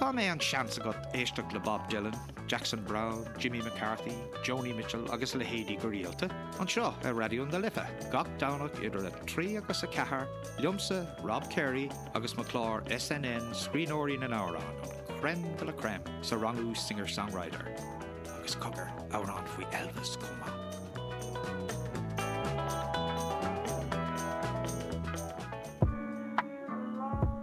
Cá mbeidh an seans agat éisteacht le Bob Dylan, Jackson Browne, Jimmy McCarthy, Joni Mitchell agus a leithéidí go rialta? Anseo ar Raidió na Life, gach Domhnach idir 3 agus 4, liomsa, Rob Carey, agus mo chlár SNN Scríbhneoirí na nAmhrán, an crème de la crème sa rangú Singer-Songwriter. Agus cogar, amhrán faoi Elvis chomh maith.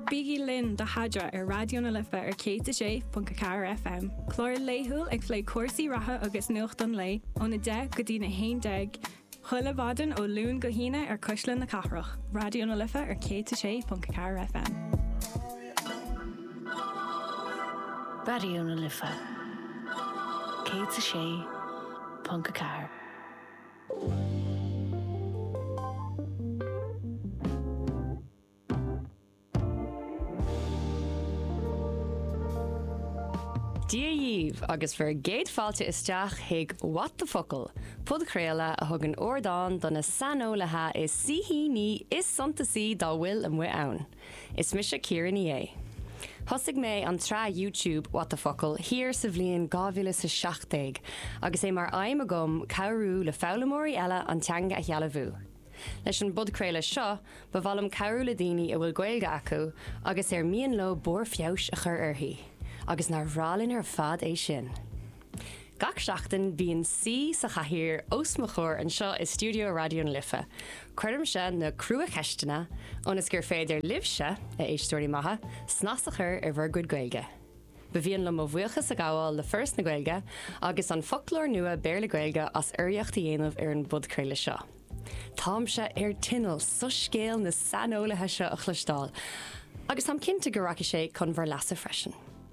Bígí linn do Haidra ar Raidió na Life ar 106.4 FM. Clár laethúil ag plé cúrsaí reatha agus nuacht an lae ón 10 go dtí na 11 chuile mhaidin ó Luan go hAoine ar Cuisle na Cathrach. Raidió na Life ar 106.4 FM. Raidió na Life 106. .4. Dia dhíbh agus bhur gcéad fáilte isteach chuig What the Focal! podchraoladh a thugann ardán do na saineolaithe is saoithiúla is suntasaí dá bhfuil amuigh ann. Is mise Ciara Ní É. Thosaigh mé an tsraith YouTube What the Focal! thiar sa bhliain dhá mhíle is a seacht déag agus é mar aidhm agam cabhrú le foghlaimeoirí eile an teanga a shealbhú. Leis an bpodchraoladh seo, ba mhaith liom cabhrú le daoine a bhfuil Gaeilge acu agus ar mian leo barr feabhais a chur uirthi. Agus nár bhreá linn ar fad é sin! Gach seachtain bíonn saoi sa chathaoir os mo chomhair anseo i stiúideo Raidió na Life. Cuirimse na crua-cheisteanna ionas gur féidir libhse, a éisteoirí maithe, snas a chur ar bhur gcuid Gaeilge. Ba mhian liom mo bhuíochas a ghabháil le Foras na Gaeilge agus an foclóir nua Béarla-Gaeilge as urraíocht a dhéanamh ar an bpodchraoladh seo. Táimse ar tinneall soiscéal na saineolaithe seo a chloisteáil agus táim cinnte go rachaidh sé chun bhur leasa freisin.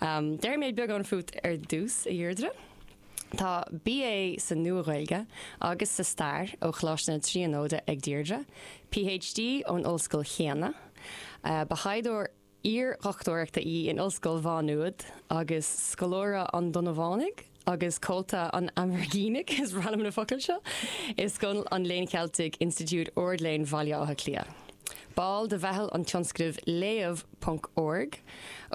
Déarfaidh mé beagán fút ar dtús, a Dheirdre. Tá BA sa Nua-Ghaeilge agus sa Stair ó Choláiste na Tríonóide ag Deirdre, PhD ón ollscoil chéanna. Ba thaighdeoir iar-dhochtúireachta í in Ollscoil Mhá Nuad agus scoláire an Donnabhánaigh. agus Comhalta an Aimhirgínigh, is randam na focail seo, i Scoil an Léinn Cheiltigh, Institiúid Ard-Léinn Bhaile Átha Cliath. Ball de mheitheal an tionscnaimh Léamh ponc org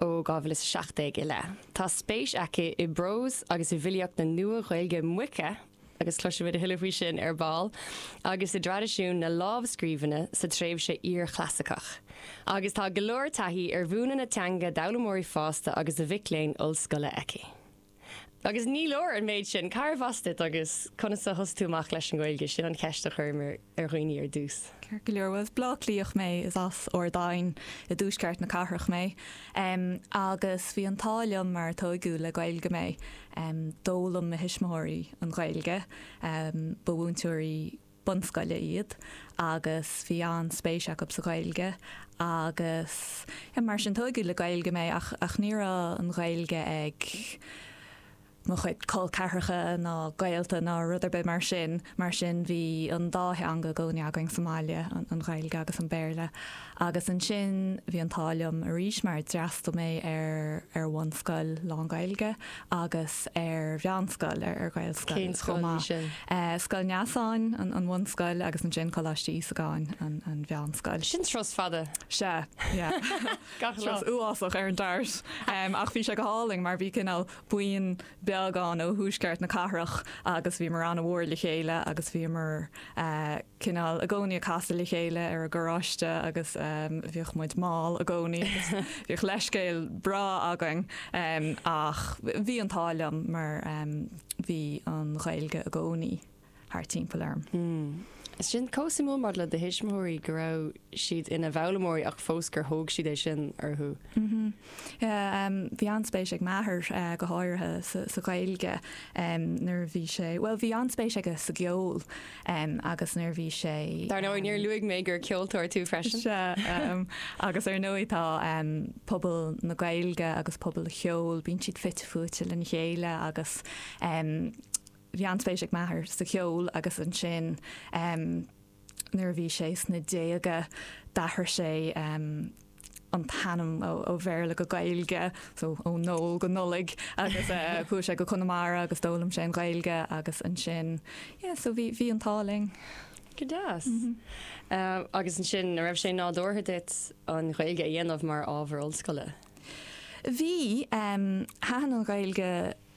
ó 2017 i leith. Tá spéis aici i bprós agus i bhfilíocht na Nua-Ghaeilge Moiche, agus cloisfimid a thuilleadh faoi sin ar ball, agus i dtraidisiún na lámhscríbhinne sa tréimhse iar-chlasaiceach. Agus tá go leor taithí ar mhúineadh na teanga d'fhoghlaimeoirí fásta agus do mhic léinn ollscoile aici. Agus ní leor an méid sin. Cárbh as duit agus conas a thosaigh tú amach leis an nGaeilge, sin an cheist a chuireamar ar dhaoine ar dtús. Ceart go leor, bhuel is as Bleá Cliath mé, is as Ard Aidhin i dtuaisceart na cathrach mé agus bhí an t-ádh liom mar tóigeadh le Gaeilge mé. D'fhoghlaim mo thuismitheoirí an Ghaeilge, ba mhúinteoirí bunscoile iad agus bhí an-spéis acu sa Ghaeilge agus mar sin tóigeadh le Gaeilge mé ach ach ní raibh an Ghaeilge ag mo chuid col ceathracha ná gaolta ná rud ar bith mar sin, mar sin bhí an dá theanga i gcónaí againn sa mbaile, an Ghaeilge agus an Béarla. Agus ansin bhí an t-ádh liom arís mar d'fhreastal mé ar ar bhunscoil lán-Gaeilge agus ar mheánscoil, ar Ghaelscoil. Cén scoil í sin? Scoil Neasáin, an bhunscoil, agus ansin Coláiste Íosagáin, an mheánscoil. Sin turas fada. Sea, yeah. Gach lá. Turas uafásach ar an DART. Ach bhí sé go hálainn mar bhí cineál buíon beag ann ó thuaisceart na cathrach agus bhíomar an-mhór le chéile agus bhíomar, cineál i gcónaí ag casadh le chéile ar an gcarráiste agus bhíodh muid mall i gcónaí. Bhíodh leithscéal breá againn ach bhí an t-ádh liom mar bhí an Ghaeilge i gcónaí thart timpeall orm. Tá sé sin chomh suimiúil maidir le do thuismitheoirí go raibh siad ina bhfoghlaimeoirí ach fós gur thóg siad é sin orthu. Bhí an-spéis ag m'athair go háirithe sa Ghaeilge nuair a bhí sé, bhuel bhí an-spéis aige sa gceol agus nuair a bhí sé, Dar ndóigh, níor luaigh mé gur ceoltóir tú freisin. Sea, agus ar ndóigh tá pobal na Gaeilge agus pobal an cheoil, bíonn siad fite fuaite lena chéile agus bhí an-spéis ag m'athair sa cheol agus ansin, Nuair a bhí sé sna déaga d'athraigh sé an t-ainm ó Bhéarla go Gaeilge, so ó Noel go Nollaig, agus chuaigh sé go Conamara agus d'fhoghlaim sé an Ghaeilge agus ansin, yeah, so bhí, bhí an t-ádh linn. Go deas. Agus ansin, an raibh sé nádúrtha duit an Ghaeilge a dhéanamh mar ábhar ollscoile? Bhí. Thaitin an Ghaeilge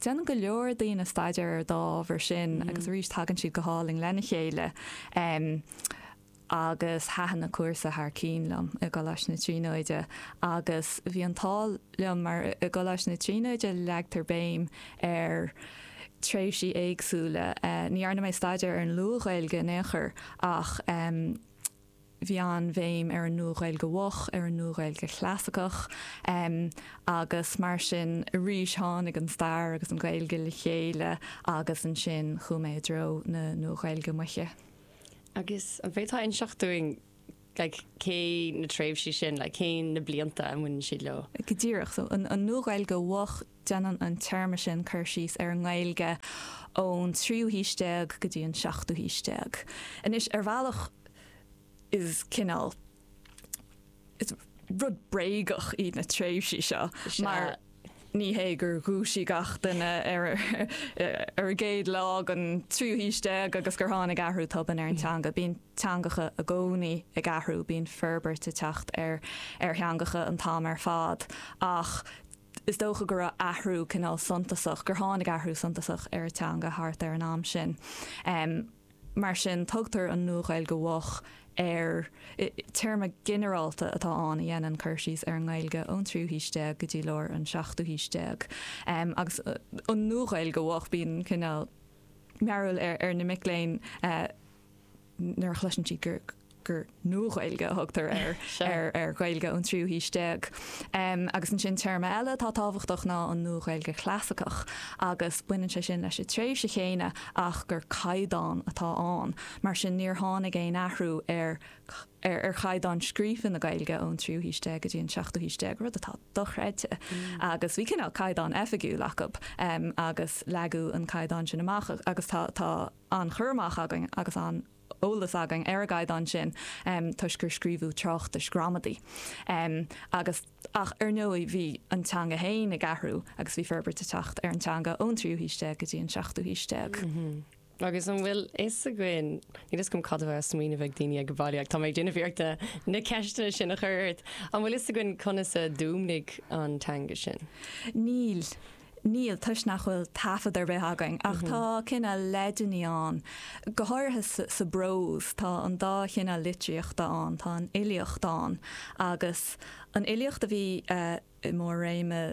Déanann go leor daoine staidéar ar an dá ábhar sin agus arís tagann siad go hálainn lena chéile agus thaitin an cúrsa thar cinn liom i gColáiste na Tríonóide agus bhí an t-ádh liom mar i gColáiste na Tríonóide leagtar béim ar tréimhsí éagsúla. Ní dhearna mé staidéar ar an Luath-Ghaeilge in aon chor ach, bhí an-bhéim ar an Nua-Ghaeilge Mhoch, ar an Nua-Ghaeilge Chlasaiceach, agus mar sin, arís tháinig an stair agus an Ghaeilge le chéile agus ansin chuaigh mé i dtreo na Nua-Ghaeilge Moiche. Agus an bhféadfá inseacht dúinn like cé na tréimhsí sin, like cé na blianta a mbaineann siad leo? Go díreach, so an Nua-Ghaeilge Mhoch, Déanann an téarma sin cur síos ar an nGaeilge ón tríú haois déag go dtí an seachtú haois déag. Anois, ar bhealach is cineál, is rud bréagach iad na tréimhsí seo mar ní hé gur dhúisigh gach duine ar a gcéad lá den tríú haois déag agus gur tháinig athrú tobann ar an teanga. Bíonn teangacha i gcónaí ag athrú, bíonn forbairt ag teacht ar theangacha an t-am ar fad ach, is dócha go raibh athrú cineál suntasach, gur tháinig athrú suntasach ar an teanga thart ar an am sin. Mar sin, tugtar an Nua-Ghaeilge Mhoch air. Téarma ginearálta atá ann a dhéanann cur síos ar an nGaeilge ón tríú haois déag go dtí lár an seachtú haois déag. Agus an Nua-Ghaeilge Mhoch, bíonn cineál mearbhall ar na mic léinn, nuair a chloiseann siad gur gur Nua-Ghaeilge a thugtar ar ar Ghaeilge ón tríú haois déag. Agus ansin téarma eile atá tábhachtach ná an Nua-Ghaeilge Chlasaiceach agus baineann sé sin leis an tréimhse chéanna ach gur caighdeán atá ann. Mar sin níor tháinig aon athrú ar ar chaighdeán scríofa na Gaeilge ón tríú haois déag go dtí an seachtú haois déag, rud atá dochreidte. Agus bhí cineál caighdeán oifigiúil acu agus leagadh an caighdeán sin amach agus tá tá an cur amach againn agus an t-eolas againn ar an gcaighdeán sin toisc gur scríobhadh tráchtais ghramadaí agus. Ach ar ndóigh bhí an teanga féin ag athrú agus bhí forbairt ag teacht ar an teanga ón tríú haois déag go dtí an seachtú haois déag. Agus an bhfuil fhios againn, níl fhios agam cad a bheadh mar smaoineamh ag daoine sa bhaile ach tá mé ag déanamh iarrachta na ceisteanna sin a chur ort. An bhfuil fhios againn conas a d'fhuaimnigh an teanga sin? Níl. Níl, toisc nach bhfuil taifead ar bith againn, ach tá cineál leideanna ann, go háirithe sa bprós, tá dhá chineál litríochta ann, tá an fhilíocht ann agus an fhilíocht a bhí i mbarr réime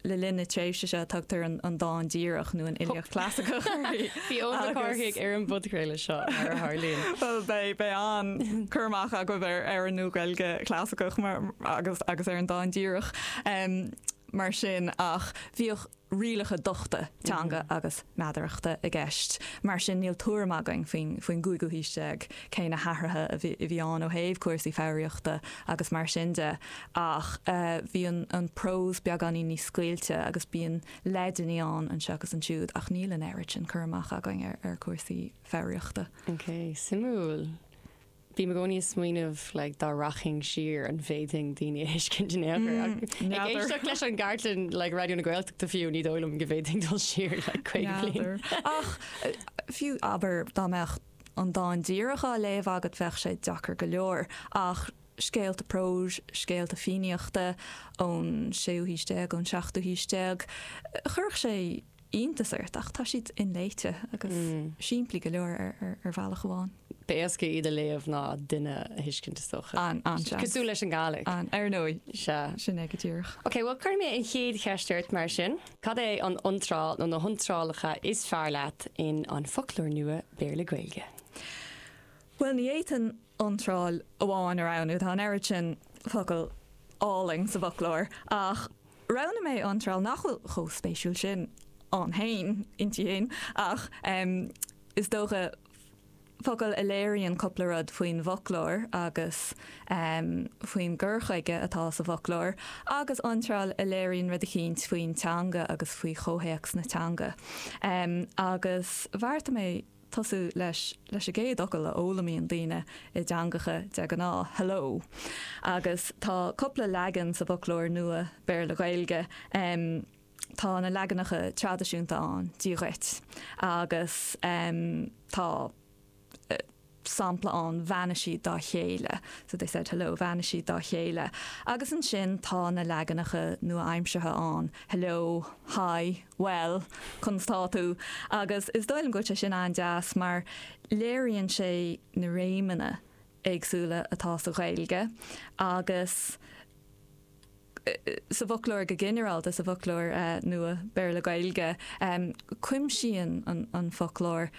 le linn na tréimhse seo a tugtar an dán díreach nó an fhilíocht chlasaiceach uirthi. Bhí Eoin Mac Cárthaigh ar an bpodchraoladh seo, mar a tharlaíonn. Bhuel, beidh an-chur amach agaibh ar an Nua-Ghaeilge Chlasaiceach agus ar an dán díreach. mar sin ach bhíodh rialacha dochta teanga agus meadarachta i gceist. Mar sin níl tuairim againn faoin gcúigiú haois déag cé na hathruithe a bhí ann ó thaobh cúrsaí foghraíochta agus mar sin de ach bhí an prós beagáinín níos scaoilte agus bíonn leideanna ann anseo agus ansiúd ach níl an oiread sin cur amach againn ar chúrsaí foghraíochta. Ok, suimiúil. Bím i gcónaí ag smaoineamh like dá rachainn siar an bhféadfainn daoine a thuiscint in aon chor ach ag éisteacht leis an gcartlann like Raidió na Gaeltachta fiú ní dóigh liom go bhféadfainn dul siar like 50 bliain. N'fheadar. Ach fiú abair dá mbeadh an dán díreach á léamh agat bheadh sé deacair go leor ach scéalta próis, scéalta Fiannaíochta ón séú haois déag, ón seachtú haois déag chuirfeadh sé iontas ort ach tá siad inléite agus simplí go leor ar bhealach amháin. Ba éasca iad a léamh ná duine a thuiscint is dócha. An an seans. Cosúil leis an Gaelic. An ar ndóigh. Sea. Sin é go díreach. Ok, bhuel cuirfidh mé an chéad cheist ort mar sin. Cad é an iontráil nó na hiontrálacha is fearr leat in An Foclóir Nua Béarla-Gaeilge? Bhuel, ní fhéadfainn iontráil amháin a roghnú. Tá an oiread sin focal álainn sa bhfoclóir, ach roghnaigh mé iontráil nach bhfuil chomh spéisiúil sin ann féin, inti féin, ach is dócha, focal a léiríonn cupla rud faoin bhfoclóir agus faoin gcur chuige atá sa bhfoclóir, agus iontráil a léiríonn rud eicínt faoin teanga agus faoi chomhthéacs na teanga. Agus bheartaigh mé. tosú leis leis an gcéad fhocal a fhoghlaimíonn daoine i dteangacha de ghnáth, hello. Agus tá cupla leagan sa bhfoclóir nua Béarla-Gaeilge. Tá na leaganacha traidisiúnta ann, Dia dhuit. Agus tá sampla ann, Bheannaigh siad dá chéile, so they said hello, Bheannaigh siad dá chéile. Agus ansin tá na leaganacha nua-aimseartha ann, hello, hi. Bhuel, conas tá tú? Agus is dóigh liom go bhfuil sé sin an-deas mar léiríonn sé na réimeanna éagsúla atá sa Ghaeilge agus sa bhfoclóir go ginearálta, sa bhfoclóir nua Béarla-Gaeilge. Cuimsíonn an foclóir.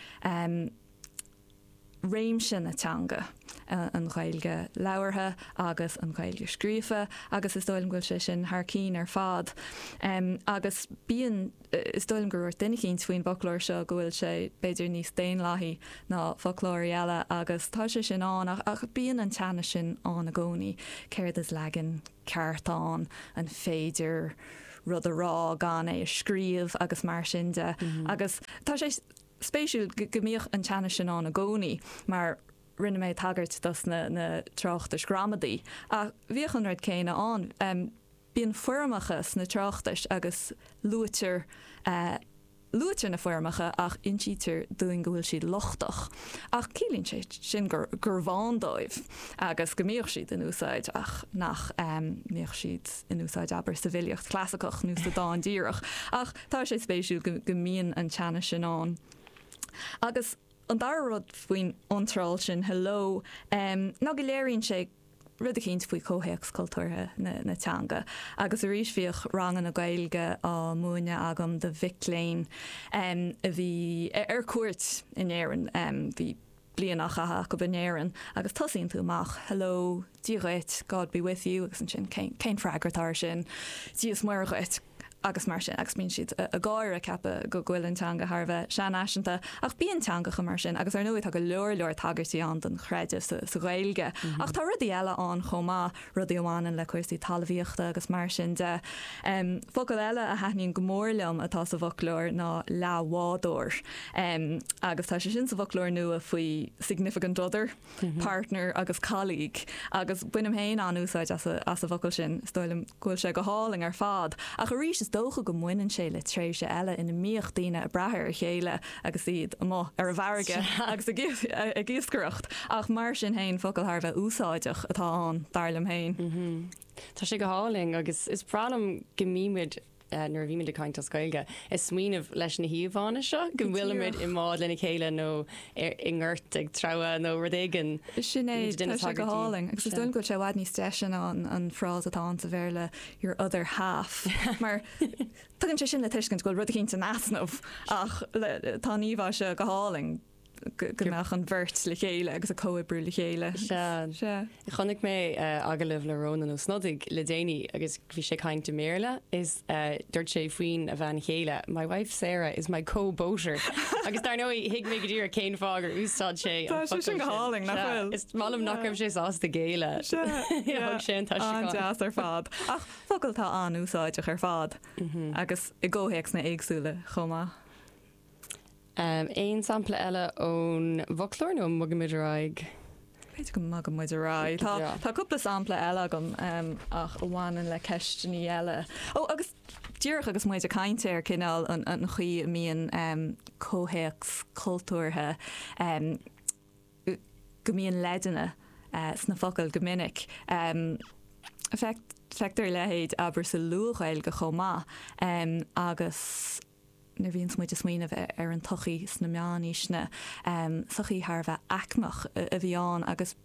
réimse na teanga, an Ghaeilge labhartha agus an Ghaeilge scríofa agus is dóigh liom go bhfuil sé sin thar cinn ar fad. Agus bíonn, is dóigh liom gur dhúirt duine eicínt faoin bhfoclóir seo go bhfuil sé b'fhéidir níos daonlathaí ná foclóirí eile agus tá sé sin ann ach bíonn an teannas sin ann i gcónaí, céard is leagan ceart ann, an féidir rud a rá gan é a scríobh agus mar sin de. Agus tá sé spéisiúil go mbíodh an teannas sin ann i gcónaí mar rinne mé tagairt dos na tráchtais ghramadaí ach bhíodh an rud céanna ann. Bíonn foirmeacha sna tráchtais agus luaitear luaitear na foirmeacha ach insítear dúinn go bhfuil siad lochtach ach ciallaíonn sé sin gur gurbh ann dóibh agus go mbíodh siad in úsáid ach nach mbíodh siad in úsáid abair sa bhfilíocht chlasaiceach nó sa dán díreach ach Tá sé spéisiúil go mbíonn an teannas sin ann. Agus an dara rud faoin iontráil sin, Hello, ná go léiríonn sé rud eicínt faoi chomhthéacs cultúrtha na teanga. Agus arís bhíodh ranganna Gaeilge á múineadh agam do mhic léinn a bhí ar cuairt in Éirinn. Bhí bliain á chaitheadh acu in Éirinn agus tosaíonn tú amach, hello, Dia dhuit, God be with you, agus ansin cén freagra atá ar sin? Dia is Muire dhuit! agus mar sin agus bíonn siad ag gáire ag ceapadh go bhfuil an teanga thar a bheith seanfhaiseanta ach bíonn teangacha mar sin agus ar ndóigh tá go leor leor tagairtí ann don chreideamh sa Ghaeilge ach tá rudaí eile ann chomh maith, rudaí a bhaineann le cúrsaí talmhaíochta agus mar sin de. Focal eile a thaitníonn go mór liom atá sa bhfoclóir ná leathbhádóir agus tá sé sin sa bhfoclóir nua faoi significant other, partner agus colleague agus bainim féin an-úsáid as an bhfocal sin. Is dóigh liom go bhfuil sé go hálainn ar fad ach arís is dócha go mbaineann sé le tréimhse eile ina mbíodh daoine ag brath ar a chéile, agus iad amuigh ar an bhfarraige agus ag iascaireacht, ach mar sin féin, focal thar a bheith úsáideach atá ann, dar liom féin. Tá sé go hálainn agus is breá liom go mbímid, nuair a bhímid ag caint as Gaeilge, ag smaoineamh leis na híomhánna seo, go bhfuilimid i mbád lena chéile nó i ngort ag treabhadh nó rud éigin. Sin é, tá sé go hálainn agus is dóigh liom go bhfuil sé i bhfad níos deise ná an frása atá ann sa Bhéarla, your other half, mar Tugann sé sin le tuiscint go bhfuil rud éicint in easnamh ach tá an íomhá seo go hálainn go mbeadh an bheirt le chéile agus ag comhoibriú le chéile. Sea. Chonaic mé agallamh le Rónán Ó Snodaigh le déanaí agus bhí sé ag caint i mBéarla is dúirt sé faoin a bhean chéile My wife Sarah is my co-boater agus dar ndóigh thuig mé go díreach cén fáth gur úsáid sé an focal sin. Tá sé sin go hálainn nach bhfuil? Is maith liom nach raibh sé sásta géilleadh. Sea. Thug sé an t-aistriúchán. An-deas ar fad. Ach. focal atá an-úsáideach ar fad agus i gcomhthéacsanna éagsúla chomh maith. Aon sampla eile ón bhfoclóir nó an mbogann muid ar aghaidh? B'fhéidir go mbogann muid ar aghaidh. Tá cúpla sampla eile agam ach a bhaineann le ceisteannaí eile. Ó agus díreach agus muid ag caint ar cineál an chaoi a mbíonn comhthéacs cultúrtha go mbíonn leideanna sna focail go minic. Feictear a leithéid, abair, sa Luath-Ghaeilge chomh maith agus nuair a bhíonns muid ag smaoineamh ar an tsochaí sna meánaoiseanna, sochaí thar a bheith aicmeach a bhí ann agus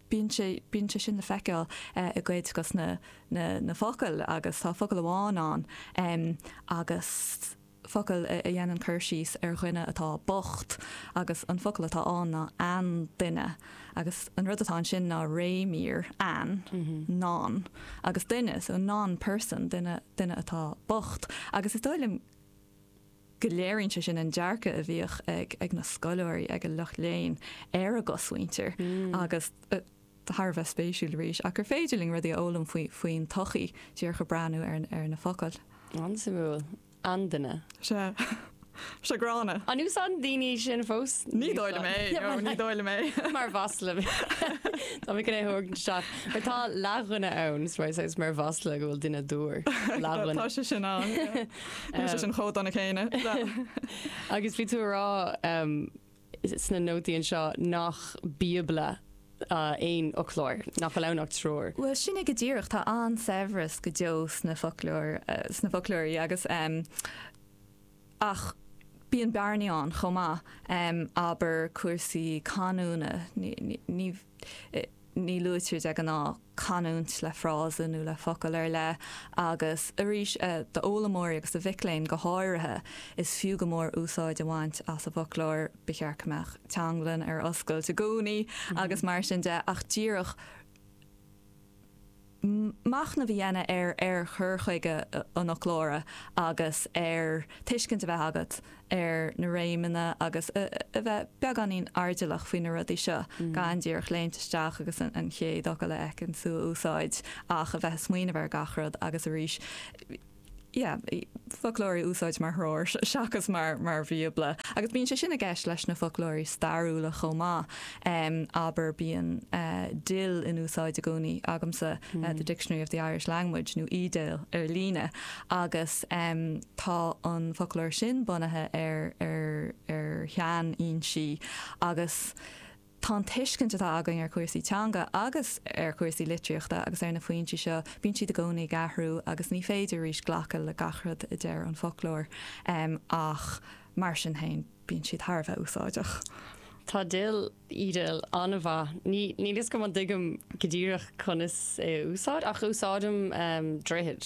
bíonn sé bíonn sé sin le feiceáil i gcuid dos na focail agus tá focal amháin ann agus focal a dhéanann cur síos ar dhuine atá bocht agus an focal atá ann ná an-duine, agus an rud atá ansin ná réimír, an, non, agus duine, so non person, duine, duine atá bocht. Agus is dóigh liom go léiríonn sé sin an dearcadh a bhíodh ag, ag na scoláirí, ag an lucht léinn ar an gcosmhuintir agus, thar a bheith spéisiúil arís ach gur féidir linn rudaí a fhoghlaim faoin tsochaí díreach ag breathnú ar na focail. An-suimiúil. An-duine. Sea. Gránna. An úsáideann daoine é sin fós? Ní dóigh liom é. No, ní dóigh liom é. Mar mhasla. Tá mé chun é a thabhairt isteach. Mar tá leathdhuine ann, a úsáidtear mar mhasla go bhfuil duine dúr. Leathdhuine. Tá sé sin ann. Tá sé sin chomh dona céanna. Agus bhí tú a rá. sna nótaí anseo nach Bíobla aon fhoclóir, nach bhfuil ann ach treoir. Bhuel, sin é go díreach, tá an-saibhreas go deo sna foclóirí agus. ach bíonn bearnaí ann chomh maith, abair cúrsaí canúna, ní. Ní luaitear de ghnáth canúint le frása nó le focal ar leith agus arís, d'fhoghlaimeoirí agus do mhic léinn go háirithe, is fiú go mór úsáid a bhaint as an bhfoclóir. Ba cheart go mbeadh Teanglann ar oscailt i gcónaí agus mar sin de ach díreach, machnamh a dhéanamh ar ar chur chuige an fhoclóra agus tuiscint a bheith agat ar na réimeanna agus a bheith beagáinín airdeallach faoi na rudaí seo, gan díreach léimt isteach agus an chéad fhocal a fheiceann tú a úsáid ach a bheith ag smaoineamh ar gach rud agus arís yeah foclóir a úsáid mar threoir seachas mar mar bhíobla agus bíonn sé sin i gceist leis na foclóirí stairiúla chomh maith um, abair bíonn uh, DIL in úsáid i gcónaí agamsa mm. uh, the mm-hmm. Dictionary of the Irish Language nó eDIL ar líne agus um, tá an foclóir sin bunaithe ar ar ar shean-fhoinsí agus Tá an tuiscint atá againn ar chúrsaí teanga agus ar chúrsaí litríochta agus ar na foinsí seo, bíonn siad i gcónaí ag athrú agus ní féidir arís glacadh le gach rud a deir an foclóir ach mar sin féin bíonn siad thar a bheith úsáideach. Tá DIL, eDIL, an-mhaith. Ní, níl 'fhios agam an dtuigim go díreach conas é a úsáid ach úsáidim droichead.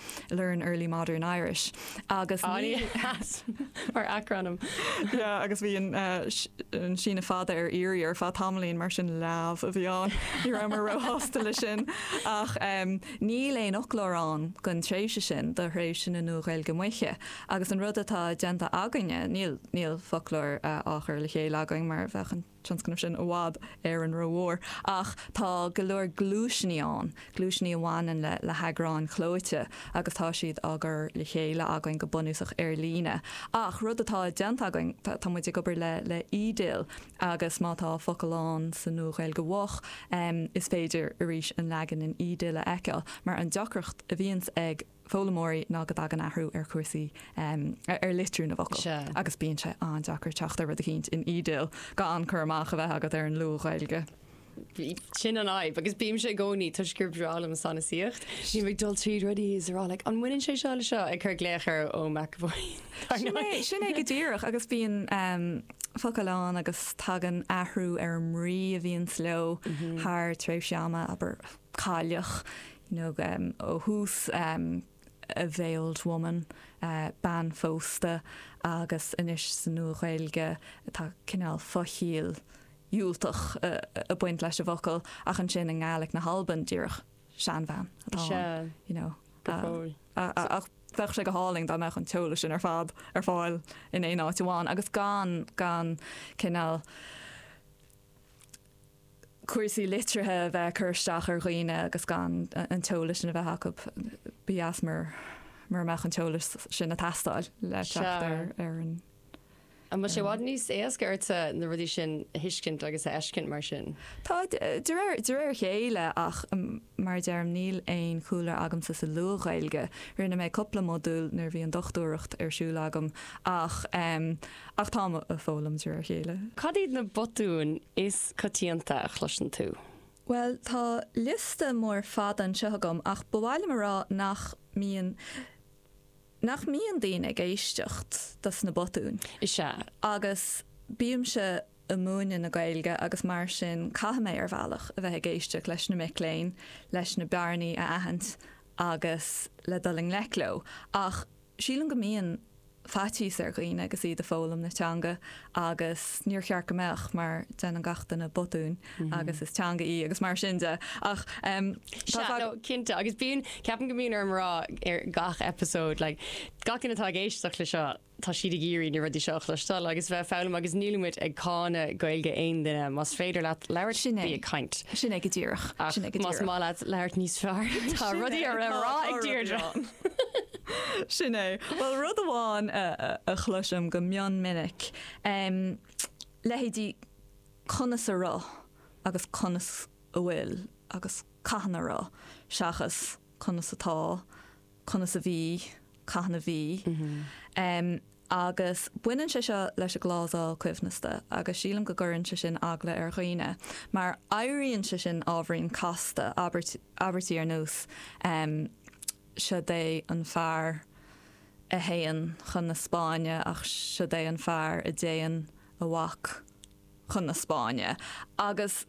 Learn Early Modern Irish agus Léamh mar acrainm. Yeah agus bhí an síneadh fada ar iarraidh ar feadh tamaillín mar sin leamh a bhí ann. Ní raibh mé ró-shásta leis sin ach níl aon fhoclóir ann don tréimhse sin do thréimhse na Nua-Ghaeilge Moiche agus an rud atá déanta againne, níl foclóir á chur le chéile againn mar a bheadh an. tionscnamh sin i bhfad ró-rómhór ach tá go leor gluaisní ann, gluaisní a bhaineann le le heagráin chlóite agus tá siad á gcur le chéile againn go bunúsach ar líne. Ach rud atá déanta againn, tá muid ag obair le le eDIL agus má tá focal ann sa Nua-Ghaeilge Mhoch, is féidir arís an leagan in eDIL a fheiceáil mar an deacracht a bhíonns ag. foghlaimeoirí ná go dtagann athrú ar chúrsaí ar litriú na bhfocal agus bíonn sé an-deacair teacht ar rud eicínt in eDIL gan cur amach a bheith agat ar an Luath-Ghaeilge. Sin an fhadhb agus bímse i gcónaí toisc gurb bhreá liom an sanasaíocht. Bím ag dul tríd rudaí is ag rá like an mbaineann sé seo le seo? ag cur glaoch ar Eoin McEvoy ar aghaidh. Sin é go díreach agus bíonn focail ann agus tagann athrú ar an mbrí a bhíonns leo thar tréimhse ama, abair. cailleach, you know, ó thús, a veiled woman, bean phósta, agus anois sa Nua-Ghaeilge tá cineál fo-chiall dhiúltach ag baint leis an bhfocal, ach ansin i nGaeilge na hAlban díreach seanbhean atá ann, you know. Go fóill. Ach bheadh sé go hálainn dá mbeadh an t-eolas sin ar fad ar fáil in aon áit amháin agus gan, gan cineál. cúrsaí litrithe a bheith ag cur isteach ar dhaoine agus gan an t-eolas sin a bheith acu. Ba dheas mura mbeadh an t-eolas sin ag teastáil le teacht ar an. An bhfuil sé i bhfad níos éasca ortsa na rudaí sin a thuiscint agus a fheiscint mar sin? Tá, de réir, de réir a chéile ach mar a deirim níl aon chúlra agamsa sa Luath-Ghaeilge. Rinne mé cúpla modúl nuair a bhí an dochtúireacht ar siúl agam ach. Ach táim á foghlaim de réir a chéile. Cad iad na botúin is coitianta a chloiseann tú? Bhuel, tá liosta mór fada anseo agam ach ba mhaith liom a rá nach mbíonn nach mbíonn daoine ag éisteacht dos na botúin. Is ea. Agus bímse ag múineadh na Gaeilge agus mar sin caithfidh mé, ar bhealach, a bheith ag éisteacht leis na mic léinn, leis na bearnaí a aithint agus le dul i ngleic leo. Ach Sílim go mbíonn faitíos ar dhaoine agus iad ag foghlaim na teanga agus níor cheart go mbeadh mar déanann gach duine botúin agus is teanga í agus mar sin de ach tá fadhb. Sea, cinnte agus bíonn, ceapaim go mbíonn orm a rá ar gach eipeasóid like gach duine atá ag éisteacht le seo tá siad ag iarraidh na rudaí seo a chloisteáil agus a bheith ag foghlaim agus níl muid ag cáineadh Gaeilge aon duine. Más féidir leat labhairt, bí ag caint. Sin é go díreach. Ach más maith leat labhairt níos fearr tá rudaí le rá ag Deirdre. Sin é. Bhuel rud amháin a chloisim go mion minic, leithéidí 'conas a raibh' agus 'conas a bhfuil' agus 'cathain a raibh' seachas 'conas atá', 'conas a bhí', 'cathain a bhí'. agus baineann sé seo leis an gclásal coibhneasta agus sílim go gcuireann sé sin eagla ar dhaoine mar éiríonn sé sin ábhairín casta, abairt, abairtí ar nós em siod é an fear a théann chun na Spáinne ach siod é an fear a dtéann a mhac chun na Spáinne agus.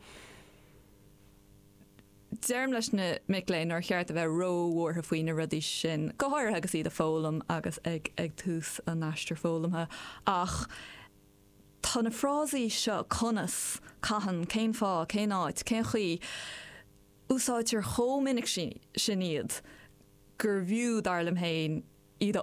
Deirim leis na mic léinn nár cheart a bheith ró-bhuartha faoi na rudaí sin, go háirithe agus iad ag foghlaim agus ag ag tús a n-aistir foghlamtha, ach tá na frásaí seo, conas, cathain, cén fáth, cén áit, cén chaoi, úsáidtear chomh minic sin iad gurbh fhiú, dar liom féin, iad a